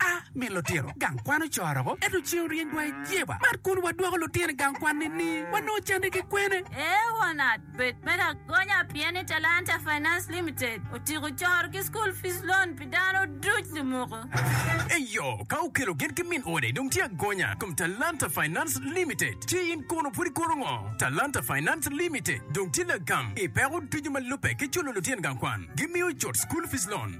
A Mi lutino gang kwan ocoro-gu, ento ceng oryeny dwai i Jeba. Mar kun wadwoko lutino i gang kwan nini? Wanongo canne ki kwene? Ee wanat, bed me lagonya pien ni Talanta Finance Limited otyeko coro ki school fees loan pi dano duc lumuku. Eyo, ka okelo gin ki min ode dong tye agonya kom Talanta Finance Limited. Ci in kono pud ikoto ngo? Talanta Finance Limited dong tye lagam i peko ducu ma lubbe ki culo lutino gang kwan. Gimiyo cut school fees loan.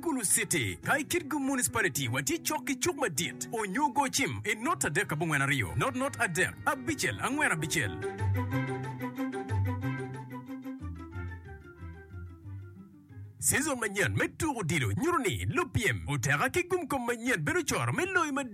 Gulu City, ka i Kitgum Municipality watye cok ki cuk madit onyo go cim i not adek abongwen aryo, not not adek abicel angwen abicel. Season manyen me tuko odilo nyuto ni lupyem oteka ki gum kom manyen bedo coro me loyo madit.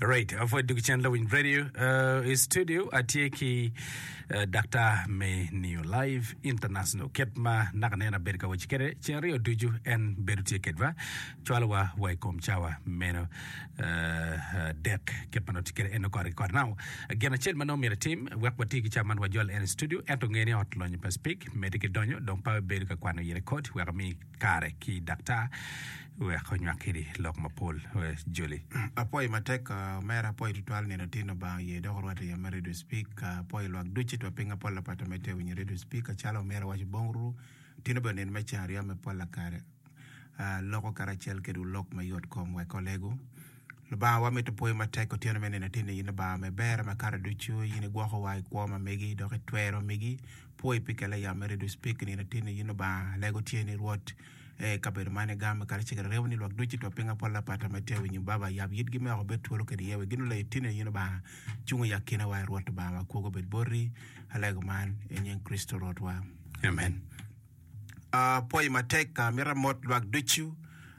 Right, apod duk cen lawiny radio uh, i studio atye ki uh, Dr. Menio Live International ket ma naka nen abedo ka waci kede cen ryo ducu en bedo tye kedwa cwalowa wa i kom cawa meno uh, uh, dek ket ma nongo tye kede en okore kore nao gin acel ma nongo myero itim wek wati ki cawa man wajol en i studio ento ngeni ot lonyo pa speak medi ki donyo dong pa bedo ka kwano yere kod wek ami kare ki daktar wek onywak kidi lok mapol joli. Apwoyi matek omera, apwoyi tutwal nino tin Lubanga oye dok orwate yam me Radio Speak, apwoyi lwak ducu itwa piny ma pol lapatte ma itye winyo Radio Speak acalo omera waco bong ru tino bene nino me ceng aryo me pol lakare loko karacel kedwu lok ma yot kom wek olegu Lubanga wa mito pwoyi matek otyeno me nino tin ni in Lubanga me ber makato ducu in igwokowa ikwo ma megi dok itwero megi Pwoyi pi kella yam mere ducu pig nino atinni yin Lubanga alego tye ni Rwot ee i kabedo man i gamo kadi cegere remo ni lwak ducu itwo pinga pol lapata ma itye winyo baba yab yitgi me oko bed twolo kede iye wek gino leyo tinni yin Lubanga cung i akina wa Rwot Lubanga wa kwogo bed boti alego man i nying Kricito Rwot wa amen Uh, pwoyi matek uh, mita mot lwak ducu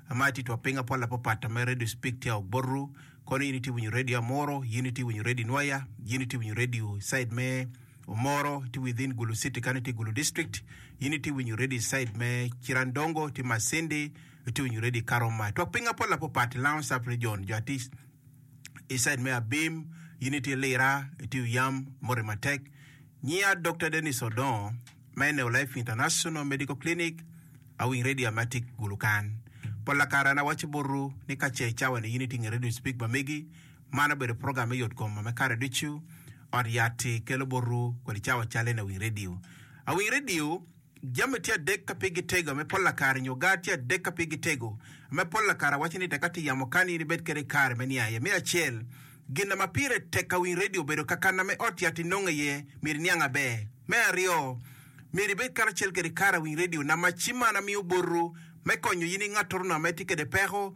uh, ma itye two pinga pol apapat uh, ma radio speak tye ok botu kono yin itye winyo radio amuru yin itye winyo radio nwoya yin itye winyo radio side me Omoro tye within Gulu city kany tye Gulu district, in itye winyo ready side me Cirandongo tye Masindi itye winyo ready Karoma twak pinga pol apo pat Lounge sub region jo atye I side me Abim in itye Lira itye Uyam moti matek Nyiya Doctor Denis Odongo me Neo Life International Medical Clinic awing ready ame atye Gulu kan pol lakara an awaco botwu ni kace icawani in itye nge radio speak mamegi Man obedo program me yotkom me kare ducu. Ot Yat-ti kelo botwu kodi cawa cal eni Awiny Radio. Awiny Radio, jami tye adek ka pigi tego me polla kare nyo gar tye adek ka pigi tego me polla kare awaco ni tek ati yamo kani in ibed kede kare me niang aye. Me acel, gin ma pire tek Awiny Radio bedo kakana me Ot Yat-ti nongo aye myero iniang aber. Me aryo, myero ibed karacel kede kare Awiny Radio namaci man amiyo botwu me konyo in ingattoru nongo ma itye kede peko